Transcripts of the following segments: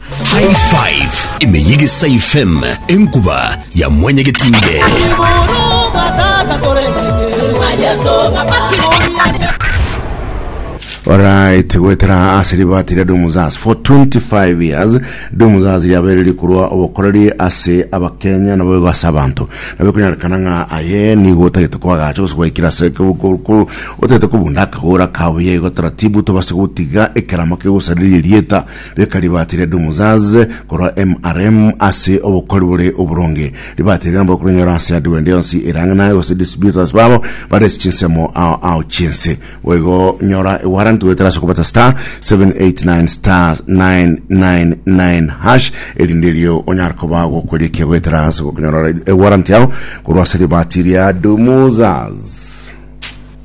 High Five imeyigisa ifm enkuba ya mwenye getinge. Alright, gwetera ase ribati ria Dumuzas for 25 years Dumuzas riabeire rikorwa obokoreri ase abakenya nabo igo ase abanto nabo konyarekana ng'a aye nigo otagete kwagacha gose gwaikira ase ko- ko- ko- otagete kobunda akagora kabuya igo taratibu tobase gotiga ekerama kegosariria erieta Beka ribaati ria Dumuzaz korwa MRM ase obokori bore oboronge. Ribaati erio nabo bakorinyora ase Advent yonsi erang'ana gose distributors babo bare ase chinsemo ao ao chiense. Boigo nyora ewarrant goetera ase okobeta star 789 star 999 hash erinde erio onyare koba gokwerikia goetera ase gokonyora ewarrant yao korwa ase ribaati ria Dumuzaz.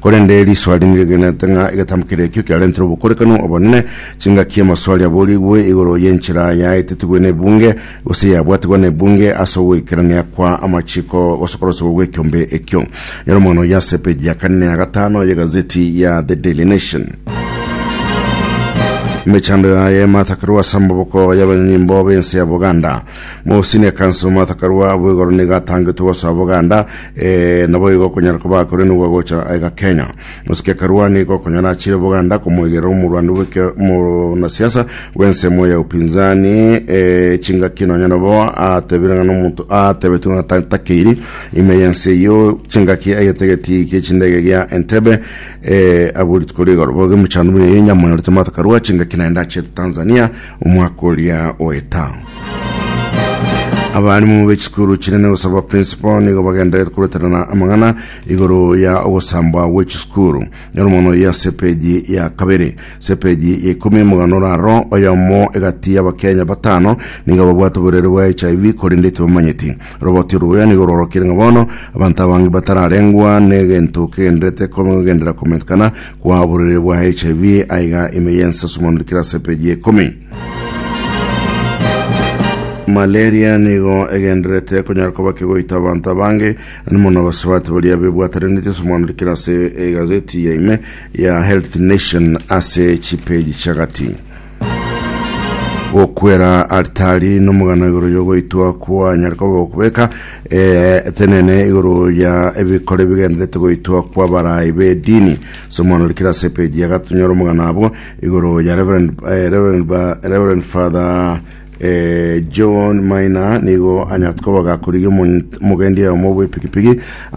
Korende risoa rinde rigenete ng'a egetambo keria ekio kiarentire obokorekano obonene, chingaki amasoa aria aborigwe igoro y'enchera yaetetigwe n'ebunge, gose yabwatigwa n'ebunge ase ogoikerania kwa amachiko gosokorosegwa gw'ekiombe ekio. Nyora omwano oyio ase epeji ya kane na ya gatano y'egazeti ya The Daily Nation. Emechando yaye ematakerwe ase amaboko y'abanyanyimbo b'ense ya Buganda. Mosi na ekansa omata karua abwo igoro nigo atangetwe gosoa Buganda, eh, naboigo okonyara koba akore nigwa gocha aiga Kenya. Mosike karua nigo okonyara achire Buganda komoigerera omorwani bweke omonasiasa bw'ensemo ya upinzani, eh, chingaki nonya nabo atebire ng'a nomonto atebetwe ng'a ta- takeiri ime y'ense eyio chingaki aigete egetii ki'echindege gia Entebbe, eh, abu rituko rigoro bogemuchando buna enyama nyorete omata karua chingaki naende achete Tanzania Omwaka oria oeta, abarimu be chisukuru chinene gosaba principal nigo bagendererete koroterana amang'ana igoro ya ogosambwa gwe chisukuru. Nyora mono ya ase epeji ya kabere. Ase epeji ya ikomi omogano oraro oyomo egati y'Abakenya batano nigo babwate oborwaire bwa HIV korende tibamanyeti. Robotia roya nigo rorokire ng'a bono abanto abange batararengwa negento kegenderete kogendera kometekana kwa oborwaire bwa HIV, aiga ime y'ensaswa manurikire ase peji ya ikomi. Malaria nigo egenderete konyara koba kegoita abanto abange mono abasubati baria bebwatareneti ase manurikire ase egazeti ya ime ya Health Nation ase chipeji chiagati. gokwera altari nomogano igoro yogoitwa kwanyare koba okobeka eh, etenene igoro ya ebikore bigenderete goitwa kwa barayi bedini somono rikira ase epeji ya gatunyora omogano abo igoro ya reverend, eh, reverend, ba- reverend father eh, john maina nigo anyarete koba gakorigia omogendia omo bw'epikipiki